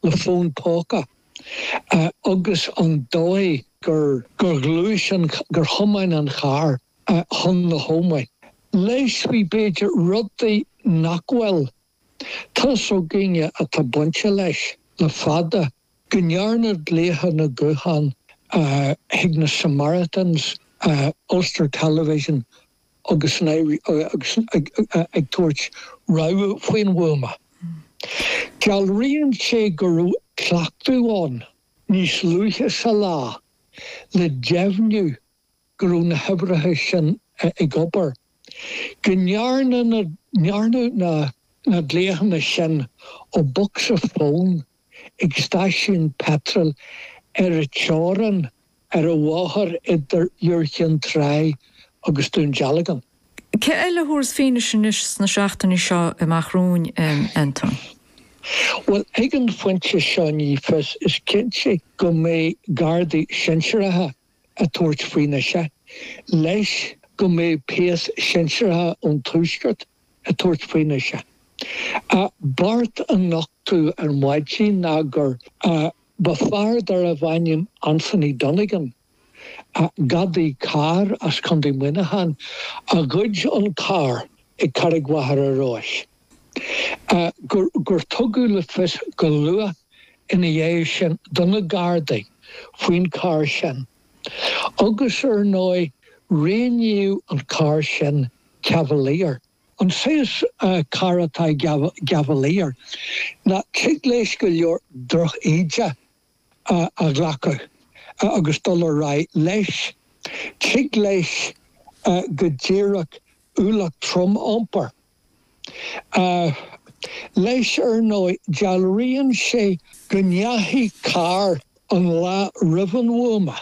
le fón póca agus an dóigh gur ghluais an, gur thiomáin an carr chun na hÓmaí. Leis, bhí b'fhéidir rudaí nach bhfuil t'fhios againne atá bainte leis le fada, go ndearnadh glaochanna gutháin chuig na Samaritans, Ulster Television agus ag tabhairt rabhadh faoin bhuama. Dealraíonn sé go raibh cleachtadh ann níos luaithe sa lá le deimhniú go raibh na huimhreacha sin ag obair, go ndearnadh na glaochanna sin ó bhocsa fóin ag stáisiún peitril ar an teorainn ar an bhóthar idir Iúr Chinn Trá agus Dún Dealgan. Cé eile a thabharfas fianaise anois sna seachtainí seo amach romhainn, Anton? Bhuel, ag an phointe seo ní fios. Is cinnte go mbeidh Gardaí sinsearacha ag tabhairt fianaise, leis, go mbeidh péas sinsearacha ón Tuaisceart ag tabhairt fianaise. A, beart a nochtadh ar maidin ná gur. A, Ba fear darbh ainm Anthony Donegan, a, gadaí cairr as Contae Muineacháin, a ghoid an carr ag Carraig Mhachaire Rois. A, Gur, gur tugadh le fios go luath ina dhiaidh sin do na Gardaí faoin charr sin agus ar ndóigh roghnaíodh an carr sin cavalier. An saghas cairr atá i gcavalier ná tig leis go leor droch-íde a ghlacadh agus dul ar aghaidh leis. Tig leis go díreach ualach trom a iompar leis. Ar ndóigh, dealraíonn sé go ndeachaigh carr an lá roimh an bhuama.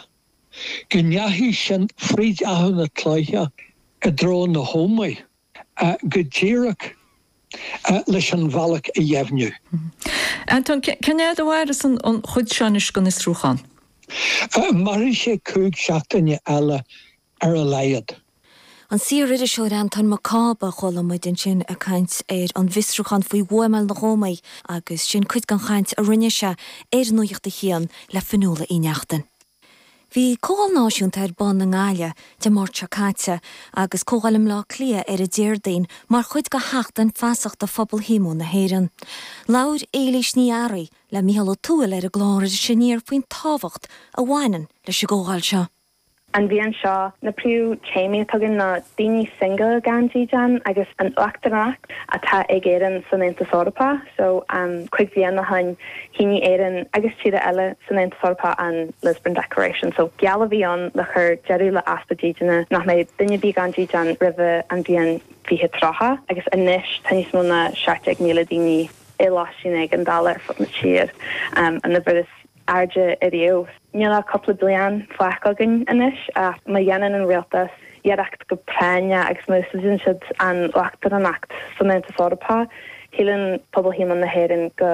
go ndeachaigh siad fríd Achadh na Cloiche i dtreo na hÓmaí, go díreach leis an bhealach a dheimhniú. Anton, cén fhad a mhairfeas an chuid seo anois den fhiosrúchán? Mairfidh sé cúig seachtaine eile, ar a laghad. An saoririseoir Anton Mac Cába, chuala muid ansin ag caint ar an bhfiosrúchán faoi bhuamáil na hÓmaí agus sin cuid den chaint a rinne sé ar Nuacht a hAon le Fionnuala Uí Neachtain. Bhí Comhdháil Náisiúnta ar bun i nGaillimh Dé Máirt seo caite agus Comhdháil i mBleá Cliath ar an Déardaoin mar chuid de Sheachtain Feasachta Phobal Shíomóin na hÉireann. Labhair Éilís Ní Fhearraigh le Mícheál Ó Tuathail ar an gclár Iris Aniar faoin tábhacht a bhaineann leis an gcomhdháil seo. An bhliain seo, na príomh téamaí atá againn ná daoine single gan dídean agus an uachtaránacht atá ag Éirinn san Aontas Eorpach. So, um cúig bliana o shoin, shínigh Éirinn agus tíortha eile san Aontas Eorpach an Lisbon Declaration. So, geall a bhí ann le cur deireadh le easpa dídine nach mbeidh duine ar bith gan dídean roimhe an bhliain fiche tríocha agus anois tá níos mó ná seacht déag míle daoine i lóistín éigeandála ar fud na tíre. An uimhir is. airde ariamh. Níl ach cúpla bliain fágtha againn anois ach má dhéanann an rialtas iarracht go práinneach agus má úsáideann siad an uachtaránacht san Aontas Eorpach, síleann Pobal Shíomóin na hÉireann go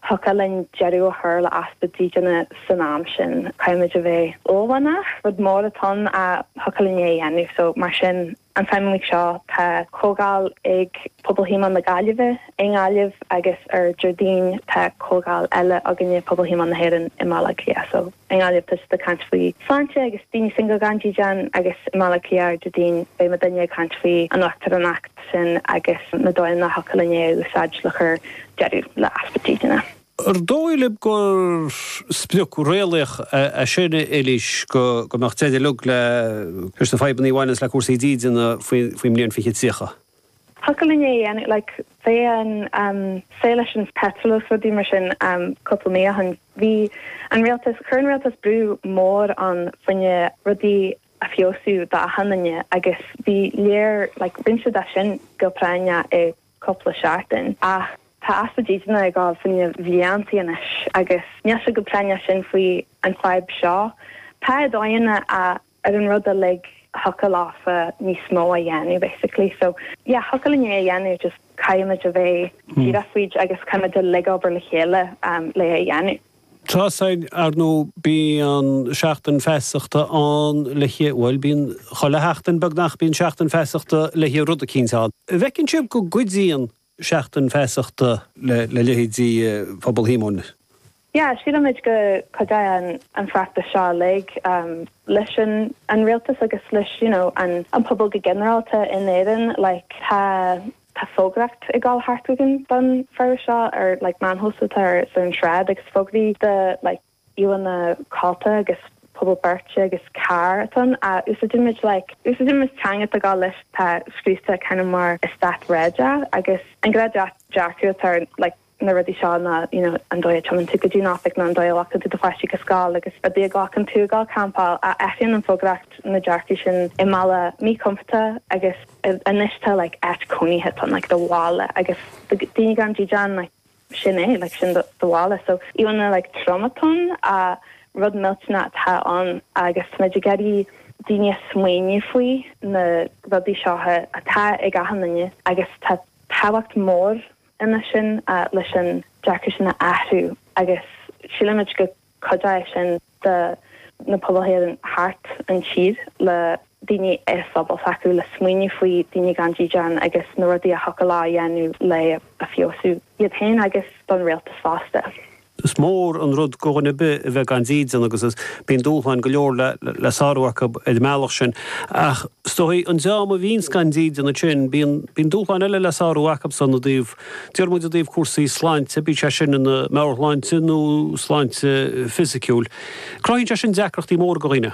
dtiocfadh linn deireadh a chur le easpa dídine san am sin. Caithfimid a bheith uaillmhianach, rud mór atá ann a thiocfadh linn é a dhéanamh, so mar sin, An tseachtain seo tá comhdháil ag Pobal Shíomóin na Gaillimhe i nGaillimh agus ar Déardaoin tá comhdháil eile againne, Pobal Shíomóin na hÉireann, i mBaile Átha Cliath. So, i nGaillimh tá siad ag caint faoi shláinte agus daoine single gan dídean agus i mBaile Átha Cliath ar Déardaoin beidh muidinne ag caint faoi an uachtaránacht sin agus na dóigheanna a thiocfadh linn é a úsáid le cur deireadh le easpa dídine. An dóigh libh gur sprioc réalaíoch é sin, a Eilís, go mbeadh deireadh uilig leis na fadhbanna a bhaineanns le cúrsaí dídine faoin mbliain 2030? Thiocfadh linn é a dhéanamh, like, an fadhb sin leis an peitreal is rudaí mar sin cúpla mí ó shin, bhí an rialtas, chuir an rialtas brú mór ann faoinne rudaí a fheabhsú d'achan duine agus bhí léir, like, rinne siad sin go práinneach i. cúpla seachtain, ach tá easpa dídine ag dul leis na bliantaí anois agus níl siad chomh práinneach sin faoi an fhadhb seo. Tá dóigheanna ar an rud uilig, thiocfadh leofa níos mó a dhéanamh basically. So yeah, thiocfadh linn é a dhéanamh just caithfimid a bheith díreach faoi dtaobh de agus caithfimid uilig obair le chéile le é a dhéanamh. Tá's againn, ar ndóigh, bíonn Seachtain Feasachta ann le, bhuel, bíonn, chuile sheachtain, beagnach, bíonn Seachtain Feasachta le rud eicínt ann. An bhfeiceann sibh go gcuidíonn Seachtain Feasachta le leithéidí Phobal Shíomóin? Yeah, sílimid go gcuidíonn an feachtas seo uilig leis an rialtas agus leis, you know, an pobal go ginearálta in Éirinn, like, tá. Tá fógraíocht ag dul thart againn don bhabhta seo ar like meáin shóisialta ar an sráid agus fógraí de like íomhánna, mála codlata agus puball beirte agus carr atá ann, úsáideann muid like úsáideann muid teanga tá gá leis tá scríofa kind of mar eastát réadach agus an gnáthdhearcadh atá ar like na rudaí seo ná you know an dóigh a dtiomáineann tú go dtí an oifig nó an dóigh a ghlacann tú do pháistí go scoil agus an dóigh a ghlacann tú ag gabháil campáil a athraíonn an fógraíocht na dearcaidh sin i mbealach míchompordach agus anois tá like áit cónaithe tá like do bhaile agus do daoine gan dídean like sin é like sin do bhaile so beidh like tromchúiseach rud millteanach atá ann agus táimid ag iarraidh daoine ag smaoineamh faoi na rudaí seo atá ag achan duine agus tá tábhacht mhór ina sin leis an dearcadh sin a athrú agus sílimid go gcuideoidh sin do na pobail thart an tír le daoine sa phobal s'acu le smaoineamh faoi daoine gan dídean agus na rudaí a thiocfadh leo a dhéanamh le feabhsú iad féin agus don rialtas fosta. Is mór an rud do dhuine ar bith a bheith gan dídean agus bíonn dúshláin go leor le sárú acu ar an mbealach sin. Ach is dóigh, an dream a bhíonns gan dídean ansin, bíonn dúshláin eile le sárú acub ansin i dtaobh, déarfaidh muid i dtaobh cúrsaí sláinte, bíodh sé sin ina meabhairshláinte nó sláinte fisiciúil. Cruthaíonn sé sin deacrachtaí móra do dhaoine.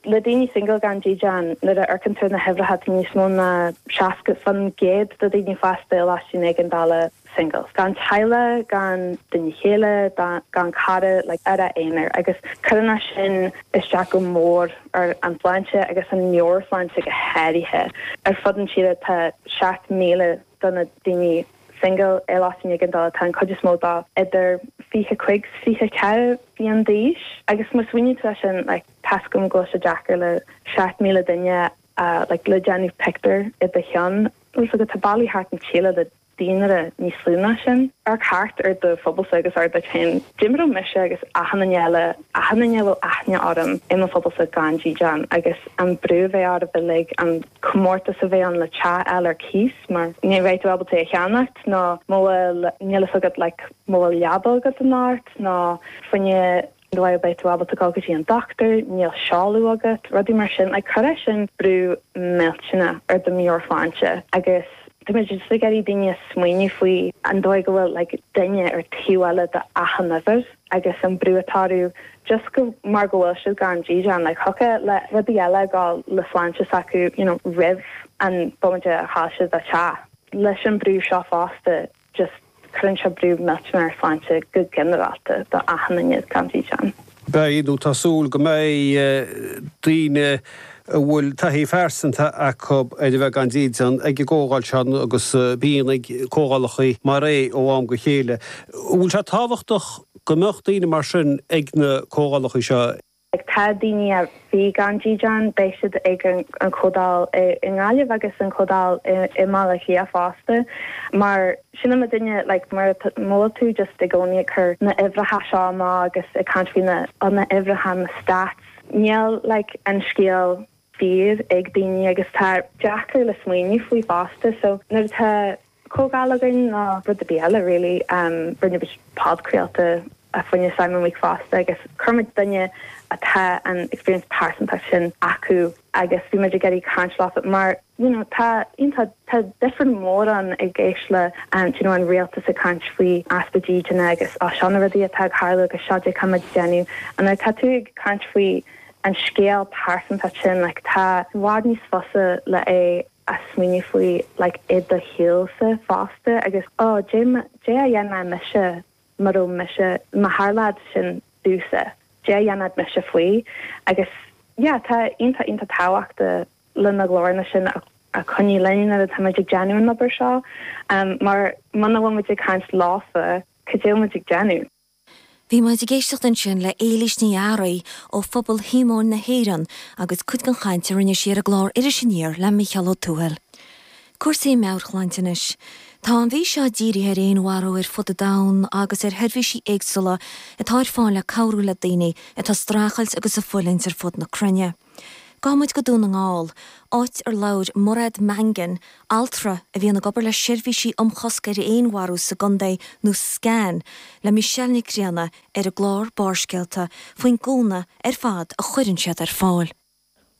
le daoine single gan dídean, nuair a amharcann tú ar na huimhreacha tá níos mó ná 60% de dhaoine fásta i loistín éigeandála single, gan teaghlach, gan duine chéile, gan cara, like ar a n-aonar agus cuireann sin isteach go mór ar an tsláinte agus an meabhairshláinte go háirithe. Ar fud an tíre tá 7,000 de na daoine single i loistín éigeandála, tá an cuid is mó daofa idir 25 's 24 bliain d'aois agus má smaoiníonn tú air sin like, Tá a fhios agam go bhfuil sé deacair le seacht míle duine a like le déanamh pictiúr i do cheann bhfuil 's agat tá bailte thart an tír le daonra níos lú ná sin. Amharc thart ar do phobalsa agus abair leat féin dá mbeadh mise agus achan duine eile, achan duine a bhfuil aithne orm, i mo phobalsa gan dídean agus an brú a bheadh oraibh uilig, an comórtas a bheadh ann le teach a fháil ar cíos mar ní bheidh tú ábalta é a cheannacht nó muna bhfuil níl fhios agat like muna bhfuil leaba agat in áit nó fiú amháin. An dóigh a mbeidh tú ábalta a ghabháil go dtí an dochtúir, níl seoladh agat, rudaí mar sin. Like, cuireann sin brú millteanach ar do mheabhairshláinte agus tá muid just ag iarraidh daoine ag smaoineamh faoi an dóigh go bhfuil like duine ar an taobh eile de achan uimhir agus an brú atá orthu just go, mar go bhfuil siad gan dídean, like thiocfadh le rudaí eile a ghabháil le sláinte s'acu you know roimh an bomaite a chaill siad an teach. Leis an brú seo fosta, just cuireann sé brú millteanach ar shláinte go ginearálta do achan duine gan dídean. Beidh, nó tá súil go mbeidh, daoine a bhfuil taithí phearsanta acu ar a bheith gan dídean ag an gcomhdháil seo agus bíonn ag comhdhálacha mar é ó am go chéile. An bhfuil sé tábhachtach go mbeadh daoine mar sin ag na comhdhálacha seo? Atá daoine a bhí gan dídean, beidh siad ag an Chomhdáil i nGaillimh agus an Chomhdáil i mBaile Átha Cliath fosta. Mar sin in amanna, like, má bhíonn tú just i gcónaí ag cur na huimhreacha seo amach agus ag caint faoi na na huimhreacha, na stats, níl like an scéal fíor ag daoine agus tá sé deacair le smaoineamh faoi fosta so nuair atá comhdháil againn ná rud ar bith eile really. Rinne muid podchraoltaí fá choinne Simon Week fosta agus chuir muid duine atá an experience pearsantach sin acu agus bhí muid ag iarraidh caint leo mar you know tá you know tá different mód ann i gcéist le you know an rialtas ag caint faoi easpa dídine agus ó seo na rudaí atá ag tarlú agus seo cad é atá muid ag déanamh and now tá tú ag caint faoi an scéal pearsantach sin like tá sé i bhfad níos fusa le é a smaoineamh faoi like i do shaolsa fosta agus ó, cad é a dhéanfadh mise má bhí mise, má tharladh sin domhsa, cad é a dhéanfadh mise faoi agus yeah tá iontach iontach tábhachtach le na glóranna sin a choinneáil linn nuair atá muid ag déanamh an obair seo mar muna bhfuil muid ag caint leofa cad é atá muid ag déanamh? Bhí muid ag éisteacht ansin le hÉilís Ní Fhearraigh ó Phobal Shíomóin na hÉireann agus cuid den chaint a rinne sí ar an gclár Iris Aniar le Micheál Ó Tuathail. Cúrsaí meabhairshláinte anois. Tá an mhí seo dírithe ar fhéinmharú ar fud an domhain agus ar sheirbhísí éagsúla atá ar fáil le cabhrú le daoine atá ag streachailt agus ag fulaingt ar fud na cruinne. Gabhann muid go Dún na nGall, áit ar labhair Mairéad Mangan, altra a bhíonn ag obair le seirbhísí um chosc ar fhéinmharú sa gcontae, nó SCAN, le Michelle Nic Grianna ar an gclár Barrscéalta faoin gcúnamh ar fad a chuireann siad ar fáil.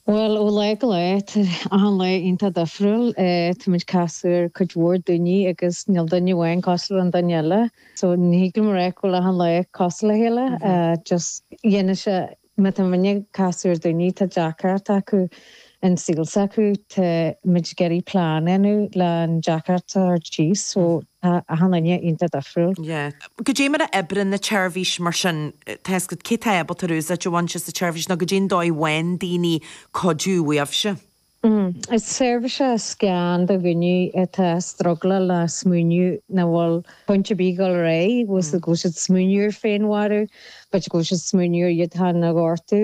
Bhuel, ó lá go lá, tá achan lá iontach difriúil. Tá muid ag casadh ar cuid mhór daoine agus níl duine amháin cosúil le an duine eile, so ní thig liom a rá go bhfuil achan lá cosúil le chéile, just depend-ann sé. Má tá muidne ag casadh ar dhaoine, tá deacracht acu sa saol s'acu, tá muid ag iarraidh plean a dhéanamh le an deacracht a thabhairt síos, so tá achan duine iontach difriúil. Yeah. Goidé mar a oibríonn an tseirbhís mar sin, tá a fhios agat, cé tá ábalta úsáid a bhaint as an tseirbhís nó goidé an dóigh a bhfaigheann daoine cuidiú uaibhse. Is seirbhís é SCAN do dhaoine atá ag struggleáil le smaoineamh nach bhfuil point ar bith dul ar aghaidh, go bhfuil siad ag smaoineamh ar féinmharú, go bhfuil siad ag smaoineamh ar iad féin a ghortú.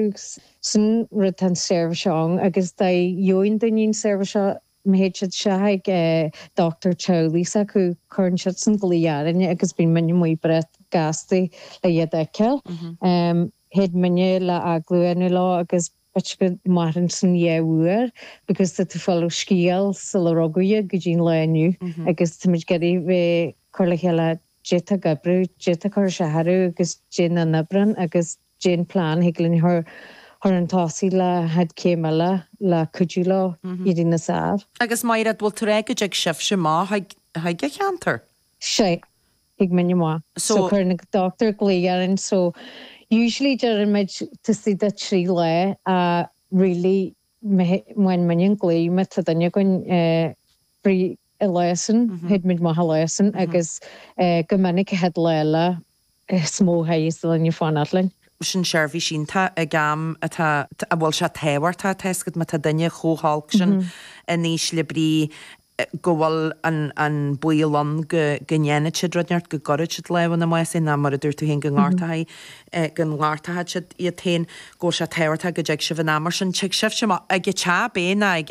Sin an rud atá an seirbhís seo ann agus dóigh a bhfaigheann daoine an seirbhís seo, má théid siad isteach chuig an dochtúir teaghlaigh s'acu, cuireann siadsan glaoch orainne agus bíonn muid amuigh breá gasta le iad a fheiceáil. Thig muidne labhairt leo ansin leo agus B'fhéidir go mairfeadh sin dhá uair because tá tú fáil an scéal sular rugadh iad go dtí an lá inniu agus táimid ag iarraidh bheith cur le chéile d'fhéadfadh oibriú, d'fhéadfadh cúrsaí a athrú agus dé nach n-oibríonn agus dén plean, thig linn cur chun tosaigh le haghaidh céim eile le cuidiú leo éirí níos fearr. Agus a Mháiréad, bhfuil tú ag rá go dtig sibhse amach chuig an cheantar? Sea, Thig muidinne amach. So cuireann an dochtúir glao orainn so usually deireann muid taobh istigh de trí lá ach really má fhaigheann muid an glao má tá duine againn free an lá sin théid muid amach an lá sin agus go minic an chéad lá eile is mó a chaithfeas duine fanacht linn. sin seirbhís iontach ag am atá a bhfuil sé tábhachtach a teascadh má tá duine chomh holc sin in ísle brí. go bhfuil an baol ann go ndéanfaidh siad rud inteacht, go gcuirfidh siad lámh ina mbás féin, nó mar a dúirt tú féin, go ngortóidh siad iad féin, go bhfuil sé tábhachtach go dtig sibh in am. Mar sin, tig sibhse amach, ag an teach, ab é, nó ag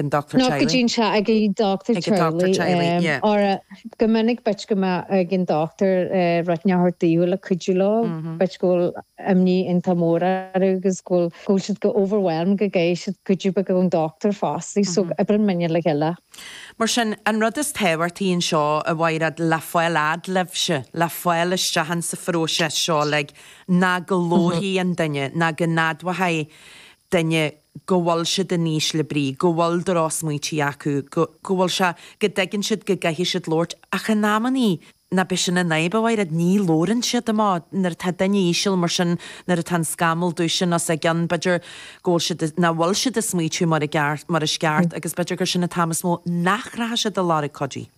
an dochtúir teaghlaigh. Ní go dtí an teach ag an dochtúir teaghlaigh. Óra, go minic, b'fhéidir go mbeadh ag an dochtúir rud inteacht daofa le cuidiú leo, b'fhéidir go bhfuil imní iontach mór orthu agus go bhfuil. Go bhfuil siad chomh overwhelmed go gcaithfidh siad cuidiú beag ón dochtúir fosta, so oibríonn muidinne le chéile. Mar sin, an rud is tábhachtaí anseo a Mháiréad, le fáil fhad libhse, le fáil isteach ins an phróiseas seo uilig, ná go labharfaidh an duine, ná go n-admhóidh duine go bhfuil siad in ísle brí, go bhfuil drochsmaointí acu, go bhfuil sé, go dtuigeann siad go gcaithfidh siad labhairt, ach in amannaí, Nach b'shin an fhadhb, a Mháiréad, ní labhrann siad amach. Nuair atá duine íseal mar sin, nuair atá an scamall dubh sin os a gcionn, b'fhéidir, go bhfuil siad, nach bhfuil siad ag smaoitiú mar i gceart, mar is ceart, agus b'fhéidir gur sin an t-am is mó nach rachaidh siad ar lorg cuidithe.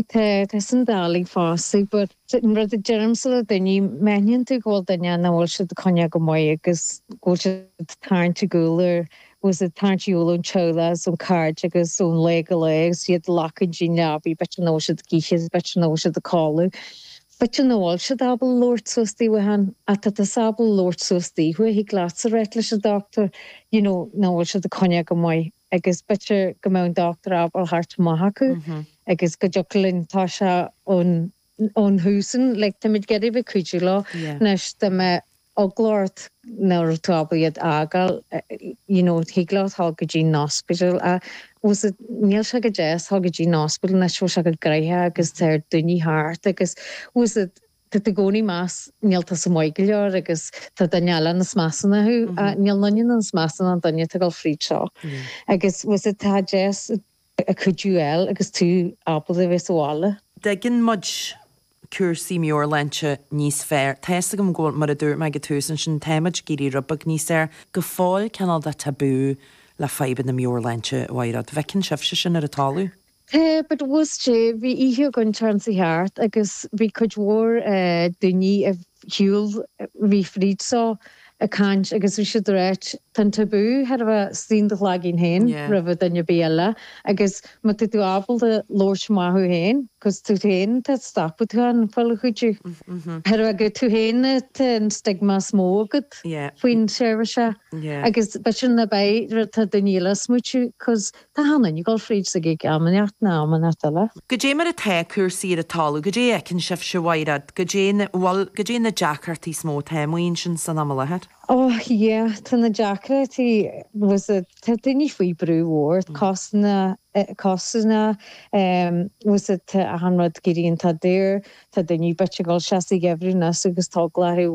Tá, tá sin doiligh fosta, but an rud a deirimse le daoine, má aithníonn tú go bhfuil duine nach bhfuil siad ag coinneáil go maith agus go bhfuil siad ag tarraingt ar gcúl ar agus ag tarraingt ar shiúl ón teaghlach is ón cairde agus ón lá go lá agus iad ag glacadh don leabaidh, b'fhéidir nach bhfuil siad ag ithe, is b'fhéidir nach bhfuil siad a' codladh, b'fhéidir nach bhfuil siad ábalta labhairt suas daofa féin, ach tá tusa ábalta labhairt suas daofa, thig leatsa ráit leis an dochtúir, you know, nach bhfuil siad a' coinneáil go maith, agus b'fhéidir go mbeadh an dochtúir ábalta theacht amach chucu, agus go dtiocfadh linn, tá sé ann, ón thús, like, táimid ag iarraidh a bheith cuidiú leo. Anois dá mbeadh eagla ort nach raibh tú ábalta iad a fhágáil, you know, thig leat teacht go dtí an ospidéal. Tá a fhios agat, níl sé go deas teacht go dtí an ospidéal anois, bhfuil sé chomh gnoitheach agus tá lear daoine thart agus, tá a fhios agat, tá tú i gcónaí meas, níl tusa maith go leor agus tá duine eile níos measa ná thú, níl aon duine níos measa ná an duine atá ag dul fríd seo agus, tá a fhios agat, tá deas, a cuidiú a fháil agus tú ábalta a bheith sa bhaile. An dtuigeann muid cúrsaí meabhairshláinte níos fearr. Tá a fhios agam go bhfuil, mar a dúirt mé ag an tús, ansin tá muid ag éirí rud beag níos fhearr go fóill cineál de tabú le fadhbanna meabhairshláinte a oidhreacht. An bhfeiceann sibhse sin ar an talamh? Tá, but bhí oíche againn an tseachtain seo thart agus bhí cuid mhór daoine a bhí. Shiúil bhí fríd seo ag caint agus bhí siad ag ráit, tá an tabú thar a bheith istigh in do chloigeann féin roimhe duine ar bith eile agus má tá tú ábalta labhairt maith thú féin, cos tú féin atá ag stopadh tú féin ag fáil cuidiú. Thar a bheith gur tú féin atá an stigma is mó agat faoin tseirbhís seo agus b'fhéidir nach b'é an rud atá daoine eile ag smaoitiú cos Tá achan duine ag dul fríd seo ag am inteacht nó am inteacht eile. Goidé mar atá cúrsaí ar an talamh? Goidé a fheiceann sibhse, a Mhairéad? Goidé na, bhuel, goidé na deacrachtaí is mó atá amuigh ansin san am i láthair? Ó, yeah, tá na deacrachtaí, was it, tá daoine faoi brú mhór, cásanna, cásanna, em, was it, tá achan rud ag éirí iontach daor, tá daoine b'fhéidir ag dul isteach sa gheimhreadh anois agus tá eagla orthu